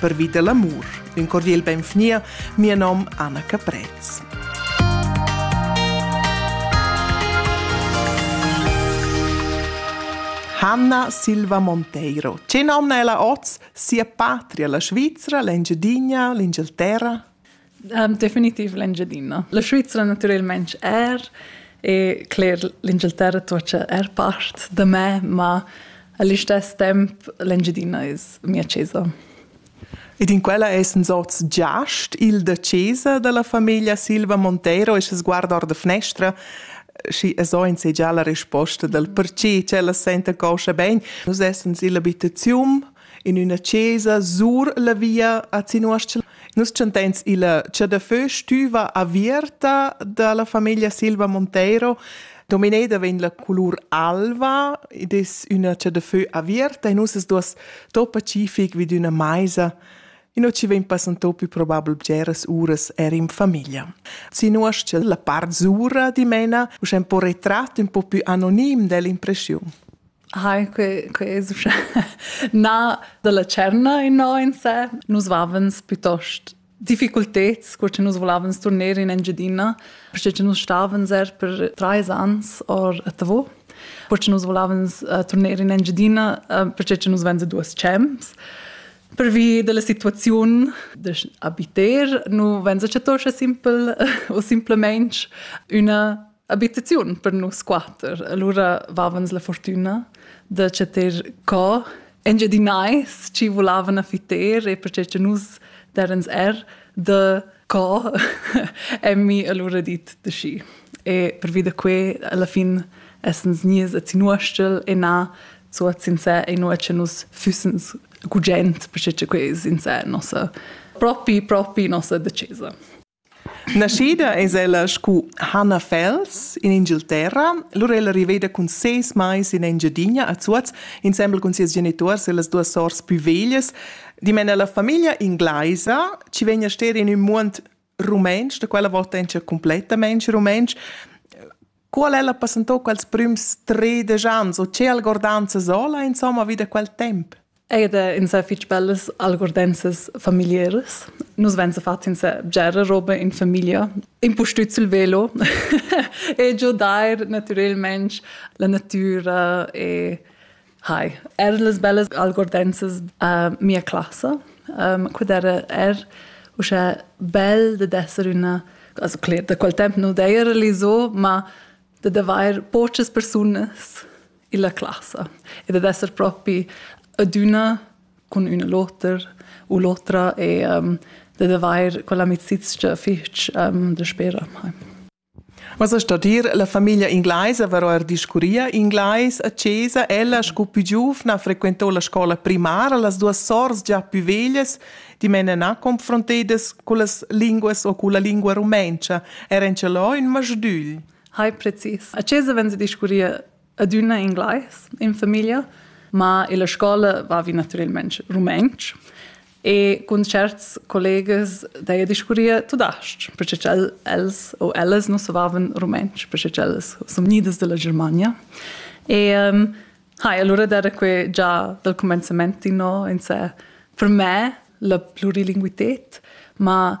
Pervi da l'amur, ün cordiel benvgnia mia nom Anna Caprez. Hanna Silva Monteiro. Ce nomna ella oz sia patria, la Svizzera, l'Engiadina, l'Inghilterra? Um, definitiv l'Engiadina. La Svizra naturalmente er e cler l'Inghilterra tuocha er part da me, ma all'istes temp l'Engiadina es mia chesa. Ed in quella essen sorts giast il da chesa dalla famiglia Silva Monteiro e se sguarda or da finestra și so insegea la risposta del perché cella sente coscia ben. Nus essen illa abitaziun in üna chesa sur la via a Zinuostl. Nus chantens illa Chadafö stüva avierta dalla famiglia Silva Monteiro. Domineda vegn la colur alva ed es üna chadafö avierta e nus es duos topa cific vid üna maisa Ino ci vegn passantò più probabel bgeras uras er in famiglia. Zinuostl, la part zura dimena, uschè un po retratto, un po più anonim dell'impressiun. Hai, quei, quei es uschè na da la tscherna innò in se. Nus vavens piuttost difficulteds, cur che nus volevans turner in Engiadina, perché che nus stavens er per trais ans or a Tavò. Cur che nus volevans uh, turner in Engiadina, uh, perché che nus venza duas champs. Pervi della situaziun da abiter, nu venza chattoscha simpel o simplemente una abitaziun per nus quater. Allora vavans la fortuna da chatter co engiadinai ci volavan a fiter e perché che nus derens er da co emmi allora dit de schi. E per vida que alla fin essens nies a zinuostel e na zu a sincer e no che nus fussens gugent perché che que sincer nossa propi propi nossa decesa. Naschida es ella scu Hannah Fels in Ingilterra, lur ella riveda cun seis mais in Engiadina a Zuoz insembel cun sias genituors e las duas sors pü veglias, dimena la famiglia inglaisa chi vegn a ster in ün muond rumentsch, da quella vota in cha cumplettamaing rumentsch, Qual ella passentò quels prüms tredisch ans o che algordanza sola insomma vi da quel temp? Eir da insà fich bellas algordenzas familiaras. Nus venza fats insà bgera roba in famiglia, impustüt sül velo e giudair natürelmaing la natüra e Hi, er las bellas algordenzas a mia classa. Um, quid era er uschè bel da d'esser üna, also cler, da quel temp nu d'eira l'iso, ma da d'avair pochas persunas illa classa e da d'esser propi adüna cun üna l'oter u l'otra e um, da d'avair quell'amicizia fich um, da spera. Hi. Vossa stadir la famiglia inglaisa va oir discurria inglais a chesa, ella sco pü giuvna frequento la scoula primara, las duas sours già pü veglias, dimena na confrontedas cullas linguas o culla lingua rumentscha, eran ce lò ün masdügl. Hai precis. A chesa venza discurria adüna inglais in famiglia, ma illa scoula vavi natüralmaing rumantsch e cun tscherts collegas d'heja discurria tudas-ch, perche ch'el els o ellas nu savavan rumantsch, perche ch'ellas sun gnidas dalla Germania. E ehm, ha, e alura d'eira que già dal cumenzament inno in sè per me la plurilinguited, ma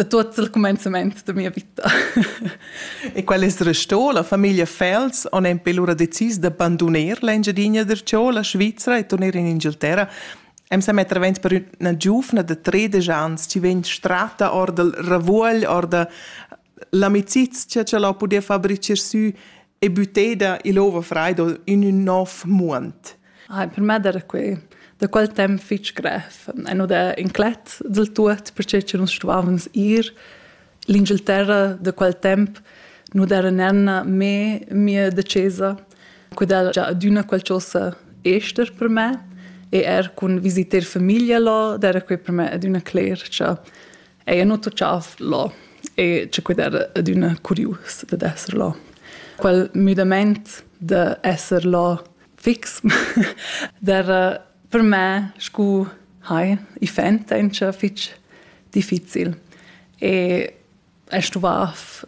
da tuts il cumenzament da mia vita. e quel es restò, la famiglia Fels on empe lura decis da banduner l'Engiadina d'Erciò, la Svizra e torner in Inghilterra. Em sa metter avent per üna giuvna de 13 ans, ci vegn strata or dal ravuogl, or da l'amicizia che la podia fabricar sü e büteda il ova fraido in ün nov muond. Hai per me der quei da quel temps fitg grev. E nu da inclet del tuot, perche che nus stuvavans ir l'Inghilterra da quel temp nu d'era nenna me mia decesa, quella già adüna qualchosa ester per me e er cun visiter famiglia là, d'era quei per me adüna cler cha Ei ha nuto tschaf là e che quei era adüna curius dad esser là. Quel müdamaint da esser là fix d'era per me scu hai i fent encha fich difficil. E è stuvaf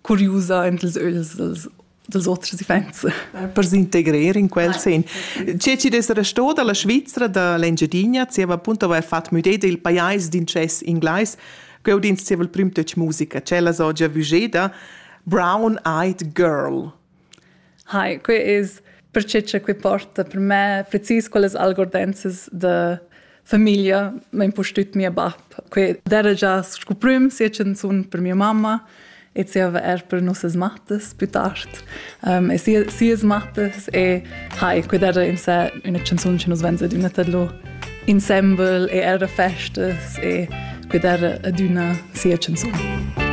curiusa en ils ögls dels, dels oters iffaints. Per s'integrer in quel sen. Tge ci des restò dalla Svizzera da l'Engiadina, zieva appunto aveva fatto müdé del pajais d'incess inglais, ch'eu dins zieva il prim töch musica, cella so gia vugeda, Brown-Eyed Girl. Hi, quei es perche cha quei porta per me precis quellas algordenzas da famiglia, m'ha impustüt mia bap. Quei d'eira già scu prüm, sia chanzun per mia mamma e zieva eir per nossas mattas plü tard. e sia sias mattas e hi, quei d'eira in sè üna chanzun chi nus vegns adüna tadlù insembel e eir a festas e quei d'eira adüna sia chanzun.